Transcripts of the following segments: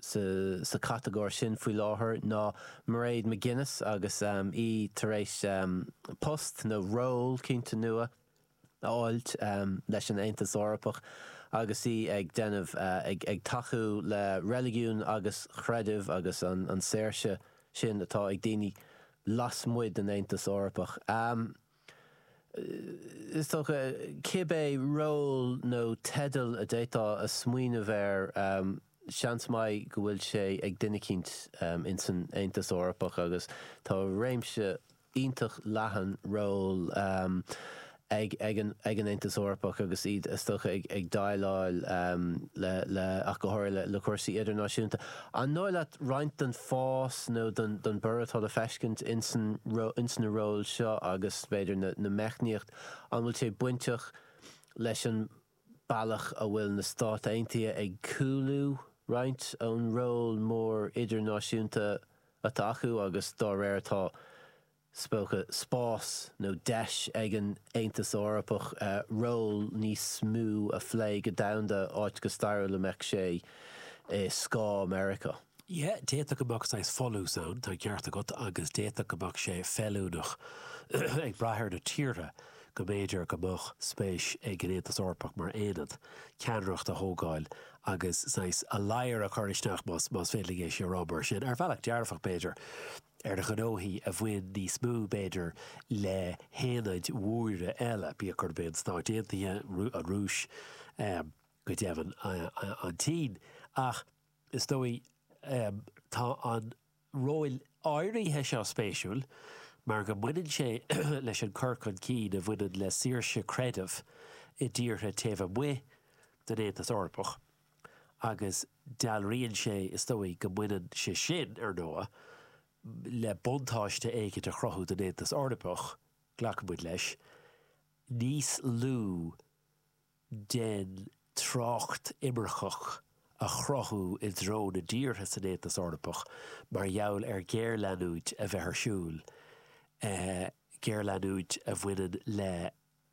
sa chatagóir sin faoi láthair ná Mairead McGuinness agus í tar éis post nó ról cinnte nua a fháilt leis an Aontas Eorpach agus í ag déanamh ag tacú le reiligiún agus creideamh agus an saoirse sin atá ag daoine lasmuigh den Aontas Eorpach. Is dócha, cibé ról nó teideal a d'fhéadfá a smaoineamh air, seans maith go bhfuil sé ag duine eicínt in san Aontas Eorpach agus tá réimse iontach leathan ról ag an Aontas Eorpach agus iad, is dócha, ag déileáil le, ach go háirithe, le cúrsaí idirnáisiúnta. An dóigh leat roinnt den fás nó den bhorradh atá le feiscint ins na róil seo agus, b'fhéidir, na meicníocht, an bhfuil sé bainteach leis an bealach a bhfuil na Stáit Aontaithe ag cúlú roinnt ón ról mór idirnáisiúnta atá acu agus dá réir atá Is dócha, spás nó deis ag an Aontas Eorpach ról níos mó a phlé go domhanda, áit go stairiúil a mbeadh sé i scáth Meiriceá. Yeah, d'fhéadfadh go mbeadh saghas folús ann, tá an ceart agat, agus d'fhéadfadh go mbeadh sé feiliúnach, ag brath ar na tíortha, go mb'fhéidir go mbeadh spéis ag an Aontas Eorpach mar aonad, ceannaireacht a thógáil agus saghas ladhar a chur isteach, más féidir linn é sin a rá mar sin, ar bhealach dearfach b'fhéidir. ar ghnóthaí a bhain níos mó, b'fhéidir, le haonaid mhóra eile, bíodh gurb é na Stáit Aontaithe, an Rúis, go deimhin an tSín, ach is dóigh tá an ról áirithe seo spéisiúil mar go mbaineann sé leis an gcur chun cinn a bhaineann le saoirse creidimh i dtíortha taobh amuigh den Aontas Eorpach. agus dealraíonn sé, is dóigh, go mbaineann sé sin, ar ndóigh, le buntáiste éicint a chruthú don Aontas Eorpach, glacann muid leis, níos lú den trácht imirceach a chruthú i dtreo na dtíortha san Aontas Eorpach mar gheall ar ghéarleanúint a bheith ar siúl, géarleanúint a bhaineann le.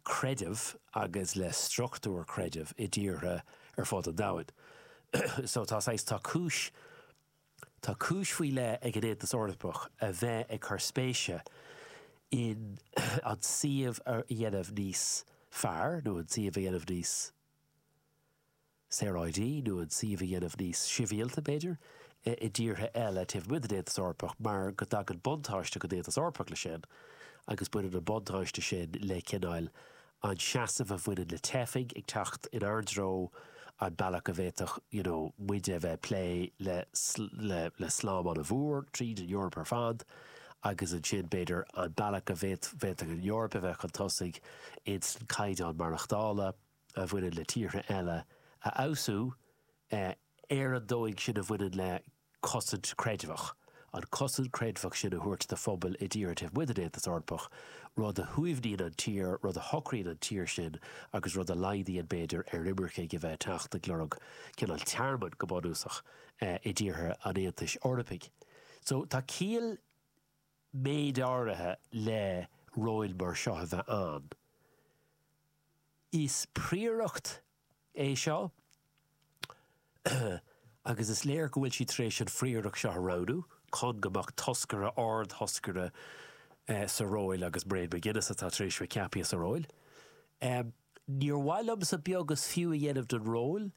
creideamh agus le struchtúir creidimh i dtíortha ar fud an domhain. So tá saghas, tá cúis, tá cúis faoi leith ag an Aontas Eorpach a bheith ag cur spéise in an suíomh a dhéanamh níos fearr nó an suíomh a dhéanamh níos, saoráidí nó an suíomh a dhéanamh níos sibhialta, b'fhéidir, i dtíortha eile taobh amuigh den Aontas Eorpach mar go dtagann buntáiste don Aontas Eorpach leis sin agus baineann an buntáiste sin le cineál an seasamh a bhaineann le teifigh ag teacht inár dtreo, an bealach a bhféadfadh you know muide a bheith ag plé le, le, le slám an-mhór tríd an Eoraip ar fad agus ansin b'fhéidir an bealach a bhféadfadh an Eoraip a bheith chun tosaigh insan caighdeán maireachtála. a bhaineann le tíortha eile a fheabhsú ar an dóigh sin a bhaineann le cosaint creidmheach, an cosaint creidmheach sin a thabhairt do phobail i dtíortha taobh amuigh den Aontas Eorpach, rud a shuaimhníonn an tír, rud a shocraíonn an tír sin agus rud a laghdaíonn, b'fhéidir, ar imircigh a bheith ag teacht ag lorg cineál tearmainn, go bunúsach, i dtíortha an Aontais Eorpaigh. So, tá ciall. méid áirithe le róil mar seo a bheith ann. Is príoracht é seo agus is léir go bhfuil siad tar éis an phríoracht seo a roghnú chun go mbeadh toscaire, ard-thoscaire sa róil agus Mairead McGuinness atá tar éis bheith ceapaithe sa róil. Níor mhaith liomsa beag is fiú a dhéanamh den róil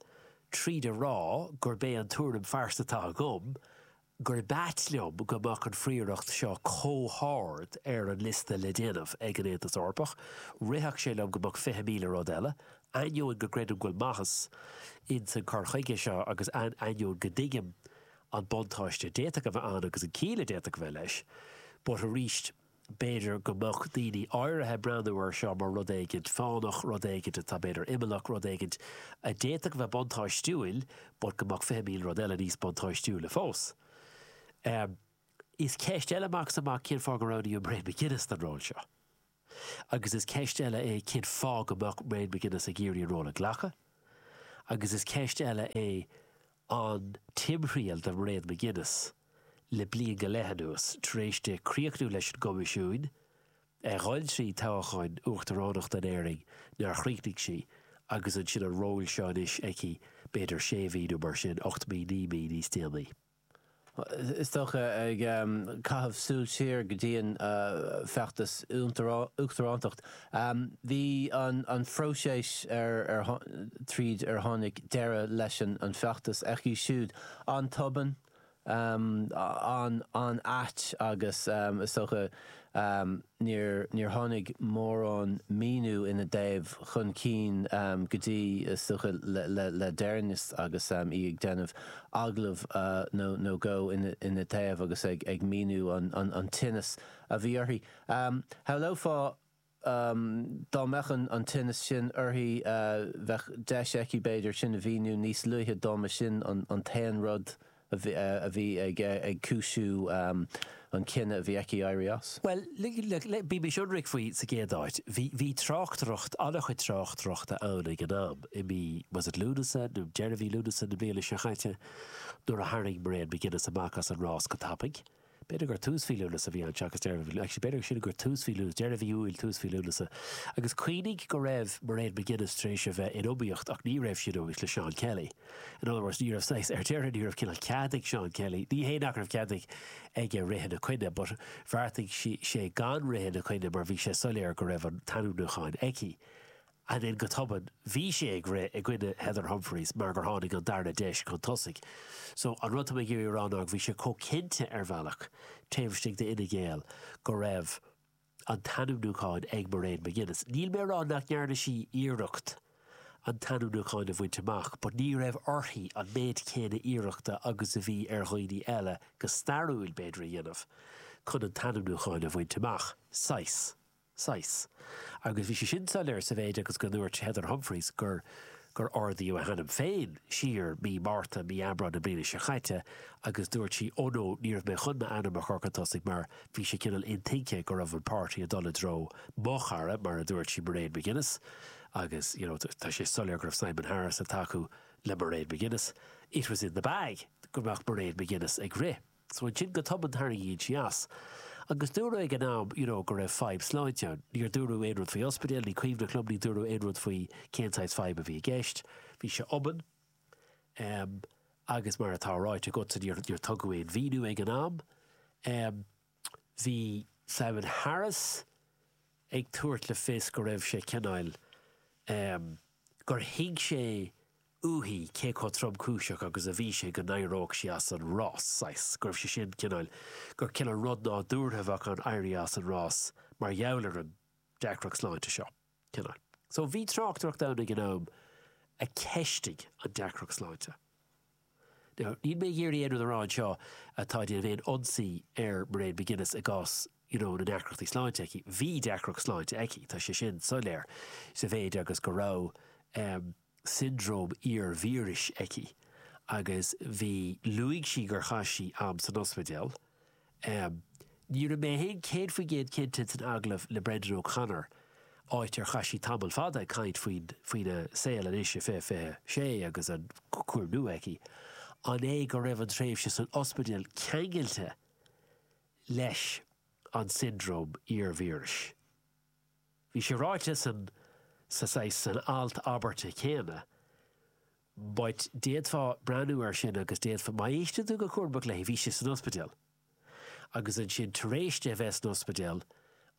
tríd a rá gurb é an tuairim phearsanta atá agam gurb ait liom go mbeadh an phríoracht seo comh hard ar an liosta le déanamh ag an Aontas Eorpach, rithfeadh sé liom go mbeadh fiche míle rud eile, ainneoin go gcreidim go bhfuil maitheas ins an cur chuige seo agus ainneoin go dtuigim an buntáiste a d'fhéadfadh a bheith ann agus an ciall a d'fhéadfadh a bheith leis, but arís. B'fhéidir go mbeadh daoine áirithe ag breathnú air seo mar rud éigin fánach, rud éigin atá b'fhéidir imeallach, rud éigin a d'fhéadfadh a bheith buntáistiúil but go mbeadh fiche míle rud eile níos buntáistiúla fós. Is ceist eile amach is amach cén fáth gur roghnaíodh Mairead McGuinness don ról seo. Agus is ceist eile é cén fáth go mbeadh Mairead McGuinness ag iarraidh an ról a ghlacadh. Agus is ceist eile é an timthriall do Mhairead McGuinness. le bliain go leith anuas, tar éis di críochnú leis an gCoimisiún, a ghoil trí thoghchán uachtaránachta in Éirinn nár chríochnaigh sí, agus ansin an ról seo anois aici b'fhéidir sé mhí nó mar sin, ocht mí, naoi mí níos déanaí. Is dócha, ag caitheamh súil siar go dtí an feachtas uachtaránachta, bhí an phróiseas trínar tháinig deireadh leis an feachtas aici siúd an-tobann, an-ait agus is dócha níor tháinig mórán míniú ina dtaobh chun cinn go dtí, is dócha, le deireanas agus í ag déanamh agallamh nó dhó ina dtaobh agus ag míniú an tinneas a bhí uirthi. Shamhlófá Dá mbeadh an tinneas sin uirthi, bheadh deis aici, b'fhéidir, sin a mhíniú níos luaithe dá mba sin an t-aon rud a bhí ag cúisiú an chinnidh a bhí aici éirí as. Bhuel, bímis ionraic faoi sa gcéad áit, bhí tráchtaireacht, an-chuid tráchtaireachta ann ag an am, i mí, was it Lúnasa, nó deireadh mhí Lúnasa na bliana seo caite, nuair a tharraing Mairéad McGuinness amach as an rás go tapaidh. B'fhéidir gur tús mhí Lúnasa a bhí ann, seachas deireadh mhí, actually b'fhéidir siúd gur tús mhí Lúnasa, deireadh mhí Iúil, tús mhí Lúnasa. Agus cuimhnigh go raibh Mairéad McGuinness tar éis a bheith in iomaíocht, ach ní raibh sí in iomaíocht le Seán Kelly. In other words, ní raibh saghas, ar deireadh ní raibh cineál cead ag Seán Kelly, ní hé nach raibh cead ag aige rith ina coinne, but bheartaigh sé gan rith ina coinne mar bhí sé soiléir go raibh an t-ainmniúchán aici. ansin go tobann bhí sé ag rith i gcoinne Heather Humphreys mar gur tháinig an darna deis chun tosaigh. So, an rud atá mé ag iarraidh a rá ná go bhí sé chomh cinnte ar bhealach taobh istigh d'Fhine Gael go raibh an t-ainmniúchán ag Mairéad McGuinness. Níl mé a rá nach ndearna sí iarracht an t-ainmniúchán a bhaint amach but ní raibh uirthi an méid céanna iarrachta agus a bhí ar dhaoine eile, go stairiúil b'fhéidir, a dhéanamh chun an t-ainmniúchán a bhaint amach, saghas. saghas. Agus bhí sé sin soiléir sa mhéid agus go ndúirt Heather Humphreys gur gur ardaíodh a hainm féin siar mí Márta, mí Aibreáin na bliana seo caite agus dúirt sí oh no, ní raibh mé chun m'ainm a chur chun tosaigh mar bhí sé cineál intuigthe go raibh an páirtí ag dul i dtreo mo chara, mar a dúirt sí, Mairéad McGuinness agus you know tá sé soiléir go raibh Simon Harris ag tacú le Mairéad McGuinness, it was in the bag go mbeadh Mairéad McGuinness ag rith. So ansin go tobann tarraingíonn sí as. Agus dúradh ag an am you know go raibh fadhb sláinte ann. Níor dúradh aon rud faoi ospidéal, ní cuimhneach liom, níor dúradh aon rud faoi cén saghas fadhb a bhí i gceist. Bhí sé obann. em, agus mar atá ráite agatsa níor, níor tugadh aon mhíniú ag an am. Em, bhí Simon Harris ag tabhairt le fios go raibh sé cineál, em, gur thuig sé, uaithi cé chomh tromchúiseach agus a bhí sé go n-éireodh sí as an rás, saghas, go raibh sé sin, cineál, gur cineál rud nádúrtha a bheadh ann éirí as an rás mar gheall ar an deacracht sláinte seo, cineál. So bhí tráchtaireacht ann ag an am a cheistigh an deacracht sláinte. Now, níl mé ag iarraidh aon rud a rá anseo atá ag déanamh aon ionsaí ar Mairéad McGuinness i gcás, you know, na ndeacrachtaí sláinte aici. Bhí deacracht sláinte aici, tá sé sin soiléir, sa mhéid agus go raibh, eh, siondróm iar-víris aici agus bhí, luaigh sí gur chaith sí am san ospidéal. Ní raibh mé féin céad faoin gcéad cinnte san agallamh le Brendan O'Connor, áit ar chaith sí tamall fada ag caint faoin faoina saol anois i 2026 agus an cúram nua aici, an é go raibh an tréimhse san ospidéal ceangailte leis an siondróm iar-víris? Bhí sé ráite san sa saghas, san alt, abairt chéanna, but d'fhéadfá breathnú air sin agus d'fhéadfá, má éisteann tú go cúramach léi, bhí sí san ospidéal agus ansin tar éis di a bheith san ospidéal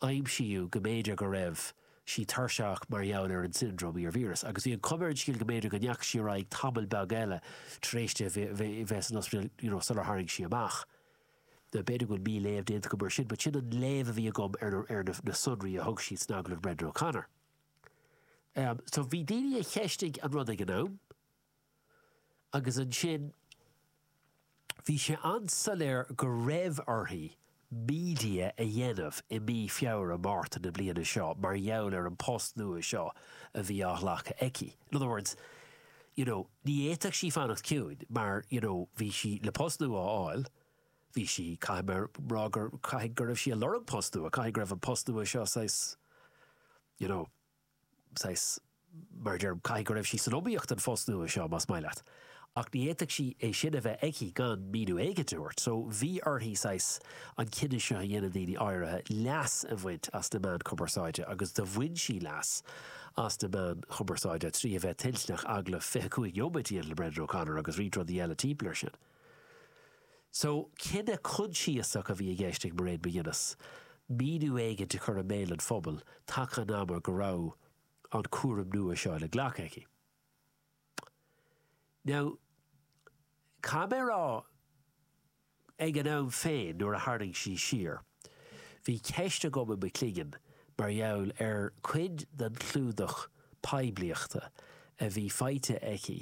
aimsíodh go mb'fhéidir go raibh sí tuirseach mar gheall ar an syndrome iarvíris agus bhí an chuma ar an scéal go mb'fhéidir go ndeachaigh sí ar aghaidh tamall beag eile tar éis di a bheith san ospidéal you know sular tharraing sí amach B'fhéidir go bhfuil mí-léamh déanta agam ar sin, but sin an léamh a bhí agam ar na ar na na sonraí a thug siad san agallamh Brendan O'Connor. Um, so bhí daoine a cheistigh an rud ag an am, agus ansin bhí sé an-soiléir go raibh uirthi media a dhéanamh i mí Feabhra, Márta na bliana seo mar gheall ar an post nua seo a bhí á ghlacadh aici. In other words, you know, ní fhéadfadh sí fanacht ciúin mar, you know, bhí sí le post nua a fháil, bhí sí, caithfidh mé a rá gur, caithfidh go raibh sí ag lorg post nua, caithfidh go raibh an post nua seo saghas, you know, saghas, mar a deirim, caithfidh go raibh sí san iomaíocht don phost nua seo, más maith leat. Ach ní fhéadfadh sí é sin a bheith aici gan míniú éigin a thabhairt. So bhí uirthi saghas an cinneadh seo a dhéanamh, daoine áirithe, leas a bhaint as na meáin chumarsáide agus do bhain sí leas as na meáin chumarsáide trí a bheith toilteanach agallamh 25 neomat a dhéanamh le Brendan O'Connor agus roinnt rudaí eile timpeall ar sin. So, cinneadh coinsiasach a bhí i gceist ag Mairead McGuinness, míniú éigin a chur i mbéal an phobail taca an ama go raibh an cúram nua seo le glacadh aici. Now, caithfidh mé a rá, Ag an am féin, nuair a tharraing sí siar, bhí ceist agam i mo chloigeann mar gheall ar chuid den chlúdach poiblíochta a bhí faighte aici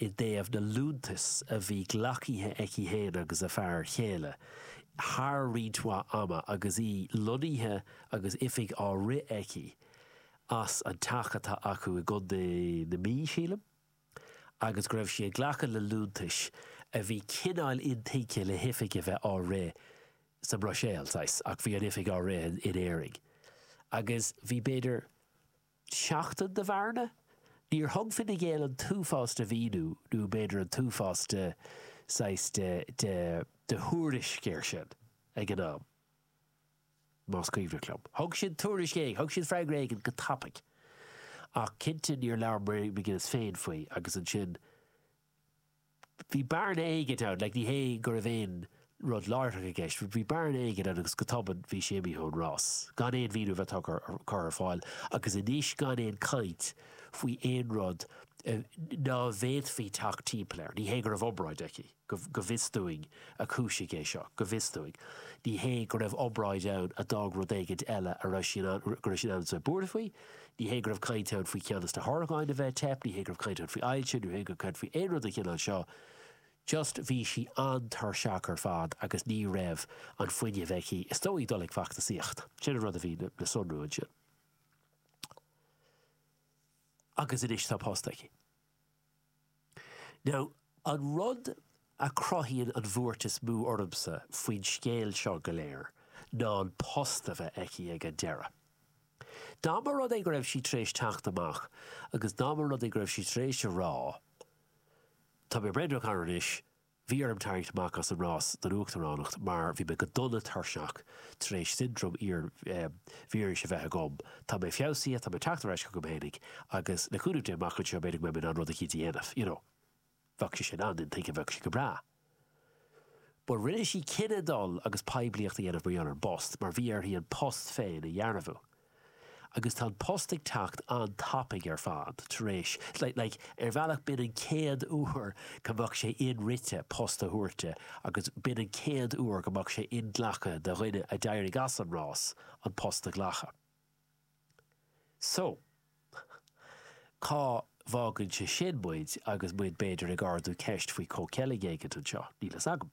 i dtaobh na liúntas a bhí glactha aici féin agus a fear chéile thar roinnt mhaith ama agus í lonnaithe agus oifig á rith aici as an teach atá acu i gContae na Mí, sílim. agus go raibh sí ag glacadh le liúntais a bhí cineál intuigthe le hoifig a bheith á rith sa mBruiséil, saghas, ach bhí an oifig á rith in Éirinn. Agus bhí, b'fhéidir, seachtain de bhearna? Níor thug Fine Gael an t-uafás de mhíniú nó b'fhéidir an t-uafás de, saghas, de, de, de thuairisc air sin ag an am. Más cuimhin liom, thug siad tuairisc éigin, thug siad freagra éigin go tapaidh. Ach cinnte níor labhair Mairead McGuinness féin faoi agus ansin bhí bearna éigin ann, like ní hé go raibh aon rud láithreach i gceist but bhí bearna éigin ann agus go tobann bhí sí imithe ón rás gan aon mhíniú a bheith tugtha curtha ar fáil agus anois gan aon chaint faoi aon rud nach bhféadfaí teacht timpeall air. Ní hé go raibh obráid aici. Go bhfios dúinn, a Chúisigh, é seo. Go bhfios dúinn. Ní hé go raibh obráid ann a d'fhág rud éigin eile a raibh sí in ann, go raibh sí in ann a bheith buartha faoi. Ní hé go raibh caint ann faoi cheann des na horgáin a bheith ag teip, ní hé go raibh caint ann faoi ailse, ní hé go raibh caint faoi aon rud den chineál seo. Just bhí sí an-tuirseach ar fad agus ní raibh an fuinneamh aici, is dóigh, dul ag feachtasaíocht. Sin an rud a bhí le sonrú ansin. Agus anois tá post aici. Now, an rud a chruthaíonn an bhuairt is mó ormsa faoin scéal seo go léir ná an post a bheith aici ag an deireadh. Dá mba rud é go raibh sí tar éis teacht amach agus dá mba rud é go raibh sí tar éis a rá, Tá mé breá folláin anois, Bhí orm tarraingt amach as an rás don uachtaránacht mar bhí mé go dona tuirseach tar éis siondróm iar-víris a bheith agam. Tá mé feabhsaithe, tá mé ag teacht ar ais chugam fhéinig agus le cúnamh Dé amach anseo b'fhéidir go mbeidh mé in ann rud eicínt a dhéanamh, you know. Bheadh sé sin an-intuigthe, bheadh sé go breá. But rinne sí cinneadh dul agus poiblíocht a dhéanamh mar gheall ar an bpost mar bhí uirthi an post féin a dhearbhú. agus tá an post ag teacht an-tapaidh ar fad tar éis, like, ar bhealach b'in an chéad uair go mbeadh sé inrite post a thabhairt di agus b'in an chéad uair go mbeadh sé inghlactha do dhuine a d'éirigh as an rás an post a ghlacadh. So, cá bhfágann sé sin muid agus muid b'fhéidir ag ardú ceist faoi comhcheilg éigint anseo, níl a fhios agam.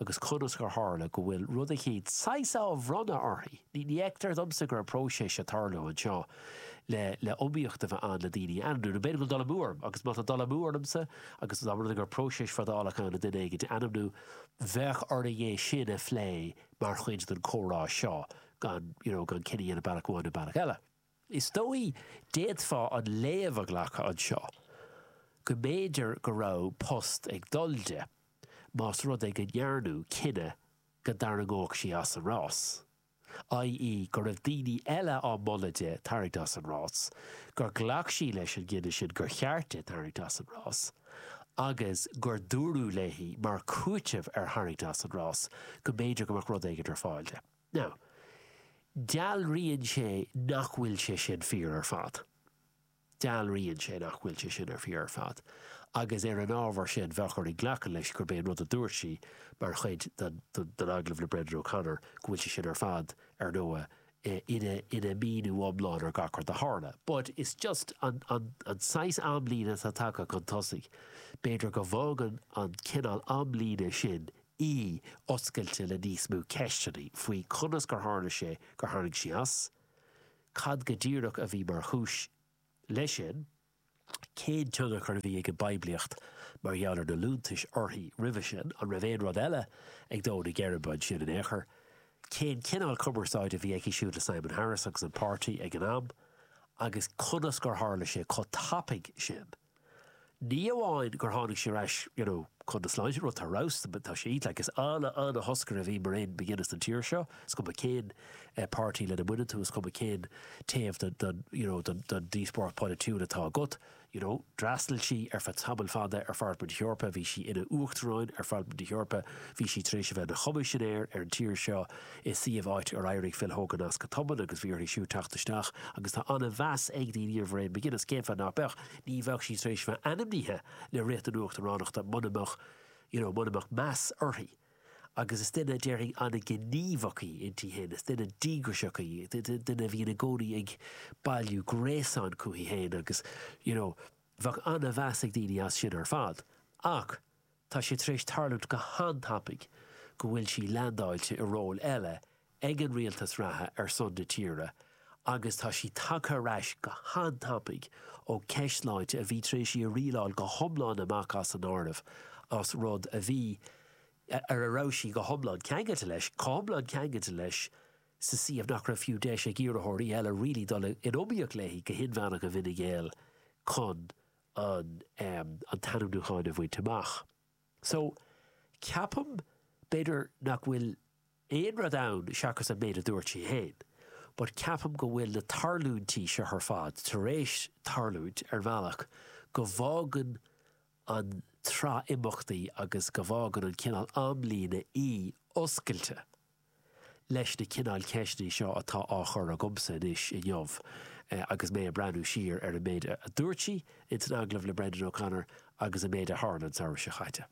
agus conas gur tharla go bhfuil rud eicínt saghas á bhronnadh uirthi, ní fheictear dhomsa go raibh próiseas ag tarlú anseo le le iomaíocht a bheith ann le daoine a ainmniú, nó b'fhéidir go bhfuil dul amú orm, agus má tá dul amú ormsa, agus dá mba rud é go raibh próiseas fadálach ann le duine éigint a ainmniú, bheadh orainn é sin a phlé mar chuid den comhrá seo, gan, you know, gan cinneadh a dhéanamh bealach amháin nó bealach eile. Is dóigh, d'fhéadfá an léamh a ghlacadh anseo go mb'fhéidir go raibh post ag dul di, más rud é go ndearnadh cinneadh go dtarraingeodh sí as an rás, ii, go raibh daoine eile ag moladh di tarraingt as an rás, gur ghlac sí leis an gcinneadh sin gur cheart di tarraingt as an rás, agus gur dúradh léi, mar chúiteamh ar tharraingt as an rás, go mb'fhéidir go mbeadh rud éigin ar fáil di. Now, dealraíonn sé nach bhfuil sé sin fíor ar fad. Dealraíonn sé nach bhfuil sé sin ar fíor ar fad, agus ar an ábhar sin, bheadh orainn glacadh leis gurb é an rud a dúirt sí mar chuid den agallamh le Brendan O'Connor, go bhfuil sé sin ar fad, ar ndóigh, ina míniú iomlán ar gach rud a tharla. But is just an saghas amlíne atá tagtha chun tosaigh, b'fhéidir go bhfágann an cineál amlíne sin í oscailte le níos mó ceisteanna faoi conas gur tharla sé gur tharraing sí as, cad go díreach a bhí mar chúis leis sin, cén tionchar a bhí ag an bpoiblíocht mar gheall ar na liúntais uirthi roimhe sin, an raibh aon rud eile ag dó na geirbe ansin in aon chor, cén cineál cumarsáide a bhí aici siúd le Simon Harris agus an páirtí ag an am agus conas gur tharla sé chomh tapaidh sin. Ní amháin gur tháinig sí ar ais you know chun na sláinte, rud atá robhsta but tá sí like is an- an-thoscaire a bhí Mairéad McGuinness don tír seo, is cuma cén eh páirtí lena mbaineann tú, is cuma cén taobh den den you know den den díospóireacht polaitiúil atá agat, you know d'fhreastail sí ar feadh tamaill fada ar Pharlaimint na hEorpa, bhí sí ina Uachtaráin ar Pharlaimint na hEorpa, bhí sí tar éis a bheith ina Choimisinéir ar an tír seo, i suíomh áit ar éirigh Phil Hogan as go tobann agus bhí uirthi siúd teacht isteach agus tá an-mheas ag daoine ar Mhairéad McGuinness, cén fáth nach mbeadh? Ní bheadh sí tar éis bheith ainmnithe le rith don uachtaránacht mura mbeadh, you know, mura mbeadh meas uirthi agus is duine, déarfainn, an-ghníomhach í inti féin, is duine díograiseach í, duine a bhíonn i gcónaí ag bailiú gréasáin chuici féin agus, you know, bheadh an-mheas ag daoine as sin ar fad ach, Tá sé tar éis tarlúint go han-tapaidh go bhfuil sí leandáilte i ról eile ag an rialtas reatha ar son na tíre agus tá sí tagtha ar ais go han-tapaidh ó ceist sláinte a bhí tar éis í a rialáil go hiomlán amach as an áireamh as rud a bhí ar a raibh sí go hiomlán ceangailte leis, chomh hiomlán ceangailte leis sa suíomh nach raibh fiú deis ag iarrthóirí eile really dul in iomaíocht léi go hinmheánach i bhFine Gael chun an an t-ainmniúchán a bhaint amach. So, ceapaim, b'fhéidir nach bhfuil aon rud ann seachas an méid a dúirt sí féin, but ceapaim go bhfuil na tarlúintí seo ar fad tar éis tarlúint ar bhealach go bhfágann an tsraith imeachtaí agus go bhfágann an cineál amlíne í oscailte leis na cineáil ceisteanna seo atá á chur agamsa anois inniu agus mé ag breathnú siar ar an méid a dúirt sí in san agallamh le Brendan O'Connor agus an méid a tharla an samhradh seo caite.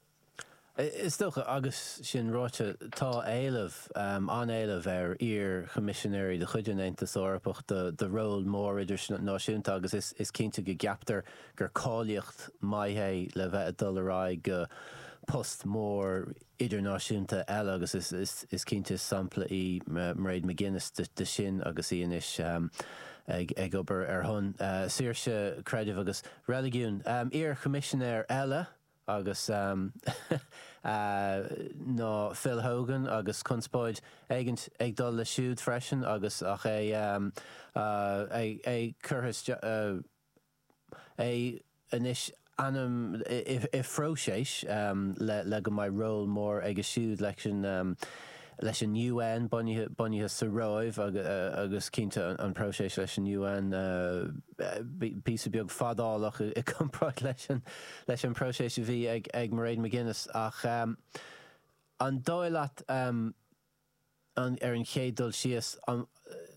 Is dócha, agus sin ráite, tá éileamh, an-éileamh, ar iar-Choimisinéirí de chuid an Aontas Eorpach do róil mhóra idirnáisiúnta agus is cinnte go gceaptar gur cáilíocht maith é le bheith ag dul ar aghaidh go post mór idirnáisiúnta eile agus is cinnte sampla í Mairead McGuinness de sin agus í anois ag obair ar son saoirse creidimh agus reiligiún. Iar Choimisinéir eile agus ná Phil Hogan agus conspóid éigin ag dul leis siúd freisin agus é curtha isteach. é anois ainm i phróiseas le go mbeidh ról mór aige siúd leis an UN, bunaithe sa Róimh agus cinnte an próiseas leis an UN píosa beag fadálach i gcomparáid leis an bpróiseas a bhí ag Mairead McGuinness ach an dóigh leat Ar an chéad dul síos,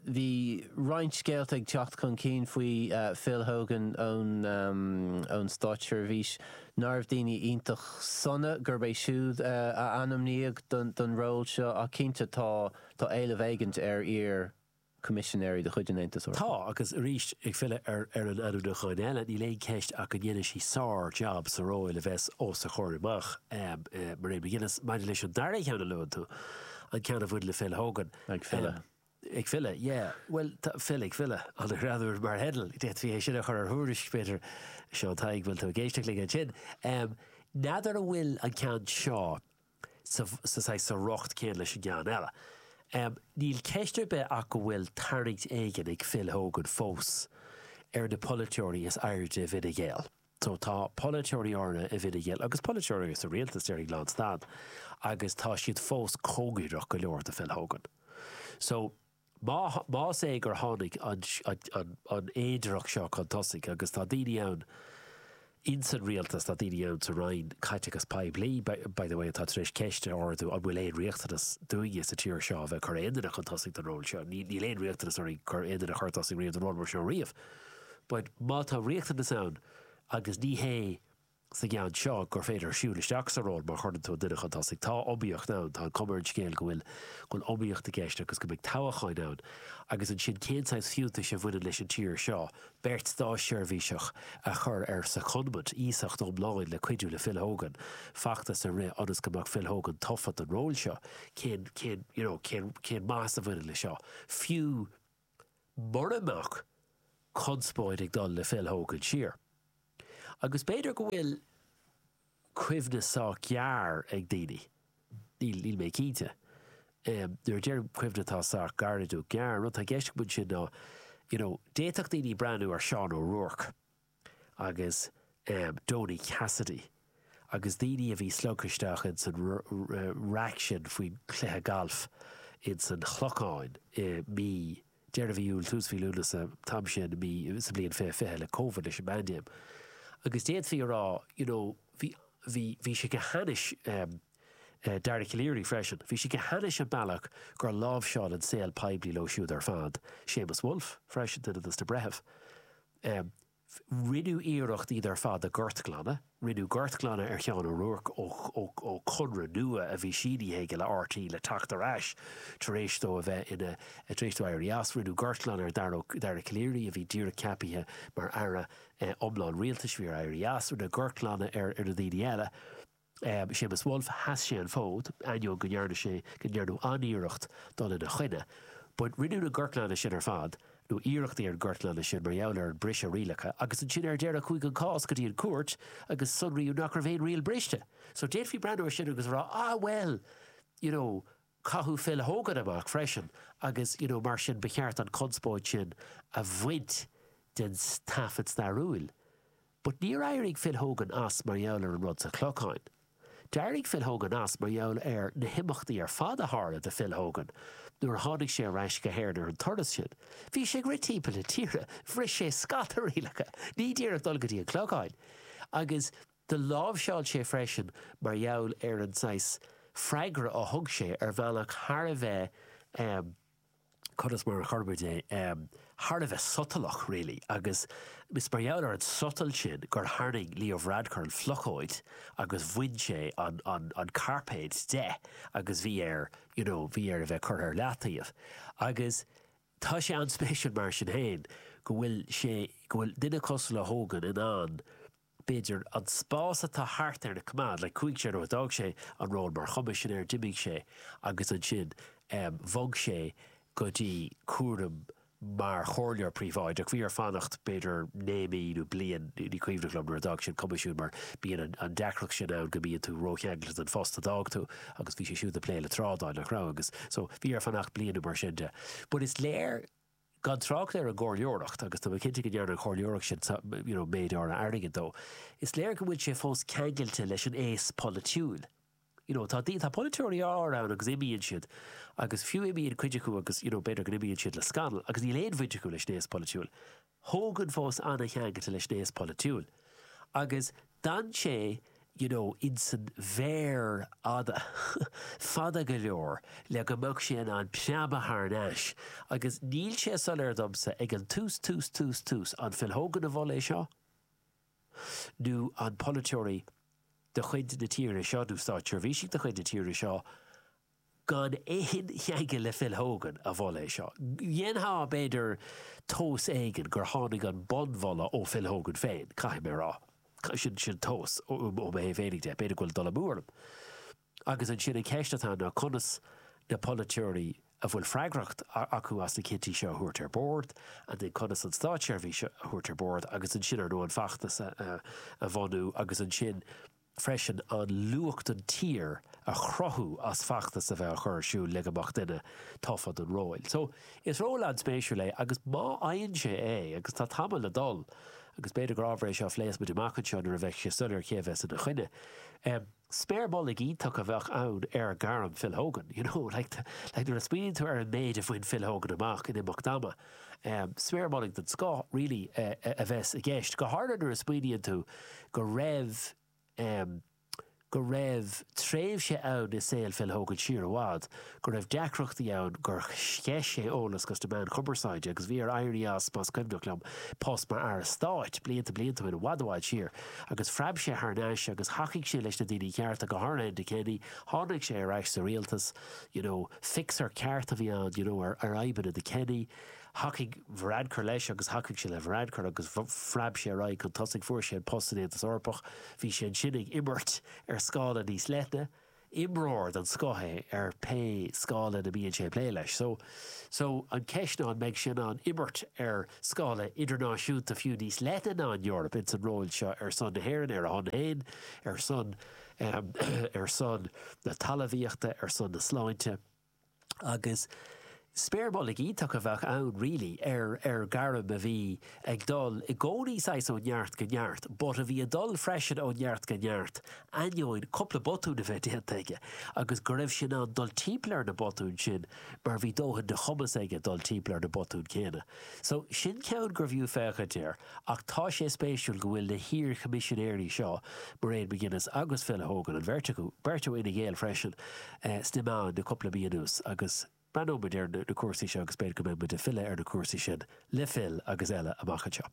bhí roinnt scéalta ag teacht chun cinn faoi Phil Hogan ón státseirbhís nach raibh daoine iontach sona gurb é siúd a ainmníodh don ról seo ach cinnte tá éileamh éigin ar iar Coimisinéirí de chuid an Aontais Eorpaigh. Tá, agus arís, ag filleadh ar ar an ainmniúcháin eile, níl aon cheist ach go ndéanfaidh sí sár-jab sa ról a bheas os a comhair amach. Mairead McGuinness, maidir leis an dara cheann a luann tú, an ceann a bhain le Phil Hogan, Ag filleadh. Ag filleadh, yeah. Bhuel, tá Phil ag filleadh, an-ghreannmhar mar theideal, d'fhéadfaí é sin a chur ar thuairisc, b'fhéidir. A Sheáin Tadhg, bhfuil tú ag éisteacht linn ansin? N'fheadar an bhfuil an ceann seo. sa riocht céanna leis an gceann eile. Níl ceist ar bith ach go bhfuil tarraingt éigin ag Phil Hogan fós ar na polaiteoirí is airde i bhFine Gael. Tá polaiteoirí áirithe i bhFine Gael, agus polaiteoirí eile sa rialtas, déarfainn, lánstad agus tá siad fós cóngareach go leor do Phil Hogan. Más é gur tháinig an fhéidearthacht seo chun tosaigh, agus tá daoine ann ins an Rialtas, tá daoine ann sa Roinn Caiteachas Poiblí, by the way, atá tar éis ceist a ardú, an bhfuil aon riachtanas dúinne sa tír seo a bheith ag cur aon duine chun tosaigh don ról seo? Níl aon riachtanas orainn cur aon duine chun tosaigh riamh don ról mar seo riamh. But má tá riachtanas ann, agus ní hé sa gceann seo gur féidir siúl isteach sa ról mar chuireann tú an duine chun tosaigh. Tá iomaíocht ann, tá an cuma ar an scéal go bhfuil go bhfuil iomaíocht i gceist agus go mbeidh toghacháin ann, agus ansin cén saghas fiúntais a bhaineann leis an tír seo? Beirt státseirbhíseach a chur ar secondment, iasacht iomlán le cuidiú le Phil Hogan, feachtas a rith ionas go mbeadh Phil Hogan tofa don ról seo, cén, cén, you know, cén, cén maitheas a bhaineann leis seo? Fiú. mura mbeadh conspóid ag dul le Phil Hogan siar. Agus b'fhéidir go bhfuil cuimhne sách gearr ag daoine, níl, níl mé cinnte. Nuair a deirim cuimhne atá sách gairid nó gearr, an rud atá i gceist agam ansin ná, you know, d'fhéadfadh daoine breathnú ar Seán O'Rourke, agus Donie Cassidy agus daoine a bhí slogtha isteach ins an raic sin faoin chluiche gailf ins an Chlocháin i mí, deireadh mhí Iúil, tús mhí Lúnasa, an t-am sin i mí, sa bhliain fiche fiche, le Covid, leis an bpaindéim. Agus d'fhéadfaí a rá, you know, bhí, bhí, bhí sé go hainnis, Dara Calleary freisin, bhí sé go hainnis an bealach gur láimhseáil an saol poiblí leo siúd ar fad, Séamus Woulfe freisin, duine dos na breithimh. ii, Rinneadh iarracht iad ar fad a ghortghlanadh. Rinneadh gortghlanadh ar Sheán Ó Ruairc ó chonradh nua a bhí sínithe aige le RTÉ le teacht ar ais tar éis dó a bheith ina, tar éis dó éirí as. Rinneadh gortghlanadh ar Dhara, Dara Calleary a bhí díreach ceapaithe mar Aire iomlán Rialtais bhí air éirí as. Rinneadh gortghlanadh ar na daoine eile. Séamus Woulfe, sheas sé an fód, ainneoin go ndearna sé go ndearnadh an-iarracht dul ina choinne. But rinneadh na gortghlanadh sin ar fad, nó iarrachtaí ar an gortghlanadh sin, mar gheall ar an briseadh rialacha, agus ansin ar deireadh chuaigh an cás go dtí an cúirt agus sonraíodh nach raibh aon riail briste. So d'fhéadfaí breathnú ar sin agus a rá, ah well, you know, caitheadh Phil Hogan amach freisin agus, you know, mar sin ba cheart an chonspóid sin a bhaint den taifead stairiúil. But níor éirigh Phil Hogan as mar gheall ar an rud sa Chlochán. D'éirigh Phil Hogan as mar gheall ar na himeachtaí ar fad a tharla do Phil Hogan nuair a tháinig sé ar ais go hÉirinn ar an turas sin. Bhí sé ag rith timpeall na tíre, bhris sé scata rialacha, ní díreach dul go dtí an Chlocháin, agus do láimhseáil sé freisin mar gheall ar an saghas freagra a thug sé ar bhealach thar a bheith eh, cuir sé mar a chuirfimid é, thar a bheith sotalach, really, agus is mar gheall ar an sotal sin gur tharraing Leo Varadkar an phlocóid agus bhain sé an cairpéad de agus bhí air, you know, bhí air a bheith curtha ar leataobh. Agus tá sé an-spéisiúil mar sin féin go bhfuil sé, go bhfuil duine cosúil le Hogan in ann, b'fhéidir, an spás atá thart air a choimeád, like, chuaigh sé, nuair a d'fhág sé an ról mar Choimisinéir, d'imigh sé agus ansin bhog sé go dtí cúram mar Chomhairleoir Príobháideach, bhí air fanacht b'fhéidir naoi mí nó bliain, ní cuimhneach liom, nuair a d'fhág sé an Coimisiún mar bíonn an deacracht sin ann go mbíonn tú ró-cheangailte den phost a d'fhág tú agus bhí sé siúd ag plé le trádáil, nach raibh? Agus, so, bhí air fanacht bliain nó mar sin de but is léir. gan trácht ar an gcomhairleoireacht, agus tá mé cinnte go ndearna an chomhairleoireacht sin you know méid áirithe airgid dó, is léir go bhfuil sé fós ceangailte leis an aos polaitiúil. You know tá tá polaiteoirí áirithe ann agus imíonn siad agus fiú imíonn cuid acu agus you know b'fhéidir go n-imíonn siad le scannal agus níl aon bhaint acu leis an aos polaitiúil. Tá Hogan fós an-cheangailte leis an aos polaitiúil agus d'fhan sé you know, insan bhféar fada, fada go leor le go mbeadh sé in ann preabadh thar n-ais agus níl sé soiléir domsa ag an tús, tús, tús, tús, an Phil Hogan a mhol é seo nó an polaiteoirí de chuid na tíre seo nó státseirbhísigh de chuid na tíre seo Gan aon cheangal le Phil Hogan a mhol é seo. Dhéanfá, b'fhéidir, tomhas éigin gur tháinig an bunmholadh ó Phil Hogan féin, caithfidh mé a rá. Sin an tomhas, ó mo thaobh féinig de. B'fhéidir go bhfuil dul amú orm. Agus ansin an cheist atá ann ná conas na polaiteoirí a bhfuil freagracht acu as na cinntí seo a thabhairt ar bord, and then conas an státseirbhís a thabhairt ar bord agus ansin, ar ndóigh, an feachtas a bhunú agus ansin, freisin an luach don tír a chruthú as feachtas a bheith á chur ar siúl le go mbeadh duine tofa don róil. So, is ról an-spéisiúil é agus má fhaigheann sé é, agus tá tamall le dul agus b'fhéidir gur ábhar é seo a phléas muid amach anseo nuair a bheidh sé soiléir cé a bheas ina choinne, em, sméar mhullaigh iontach a bheadh ann ar ghairm Phil Hogan, you know, like, like nuair a smaoiníonn tú ar an méid a bhain Phil Hogan amach in imeacht ama, Sméar mhullaigh den scoth really a bheas i gceist, go háirithe nuair a smaoiníonn tú go raibh go raibh tréimhse ann i saol Phil Hogan siar i bhfad go raibh deacrachtaí ann gur sceith sé eolas chuig na meáin chumarsáide agus bhí air éirí as, más cuimhneach liom, post mar Aire Stáit blianta blianta ó shin, i bhfad i bhfad siar, agus phreab sé thar n-ais agus thacaigh sé leis na daoine cearta, go háirithe Enda Kenny. Tháinig sé ar ais sa rialtas. you know, fixer ceart a bhí ann, you know, ar fhadhbanna Enda Kenny. Thacaigh Varadkar leis agus thacaigh sé le Varadkar agus phreab sé ar aghaidh chun tosaigh, fuair sé an post san Aontas Eorpach, bhí sé ansin ag imirt ar scála níos leithne, imreoir den scoth é ar pé scála ina mbíonn sé ag plé leis. So, so an cheist ná an mbeidh sé in ann imirt ar scála idirnáisiúnta fiú níos leithne ná an Eoraip insan ról seo ar son na hÉireann, ar a shon féin, ar son na ar son na talamhaíochta, ar son na sláinte agus sméar mhullaigh iontach a bheadh ann really ar ar ghairm a bhí ag dul i gcónaí saghas ó neart go neart but a bhí ag dul freisin ó neart go neart ainneoin cúpla botún a bheith déanta aige agus go raibh sé in ann dul timpeall ar na botúin sin mar bhí dóthain de chumas aige dul timpeall ar na botúin céanna so sin ceann gurbh fhiú féachaint air. Ach tá sé spéisiúil go bhfuil na hiar-Choimisinéirí seo, Mairead McGuinness agus Phil Hogan, an bheirt acu, beirt ó Fhine Gael freisin, sna meáin le cúpla mí anuas agus breathnóidh muid ar na cúrsaí seo agus b'fhéidir go mbeidh muid ag filleadh ar na cúrsaí sin le Phil agus eile amach anseo.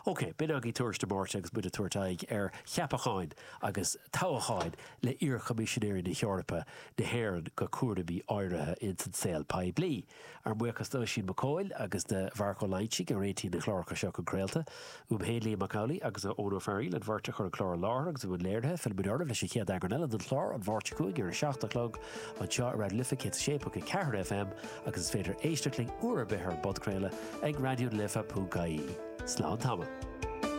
OK, b'in againn tuairisc na Máirte agus muid ag tabhairt aghaidh ar cheapacháin agus toghacháin le hiar-Choimisinéirí na hEorpa, na hÉireann go cúraimí áirithe ins an saol poiblí. Ár mbuíochas d'Oisín Mac Coille agus do Mharc Ó Loingsigh a réitigh na cláracha seo chun craolta. Uaim féin, Liam Mac Amhlaigh, agus ó Eoin Ó Fearaíl, an bheirt a chur an clár i láthair agus i mbun léirithe. Fillfimid oraibh leis an chéad eagrán eile den chlár, An Mháirt seo chugainn ar a seacht a chlog, anseo ar Raidió na Life 106.4 FM agus is féidir éisteacht linn uair ar bith ar an bpodchraoladh ag raidionalife.ie. Slán tamall.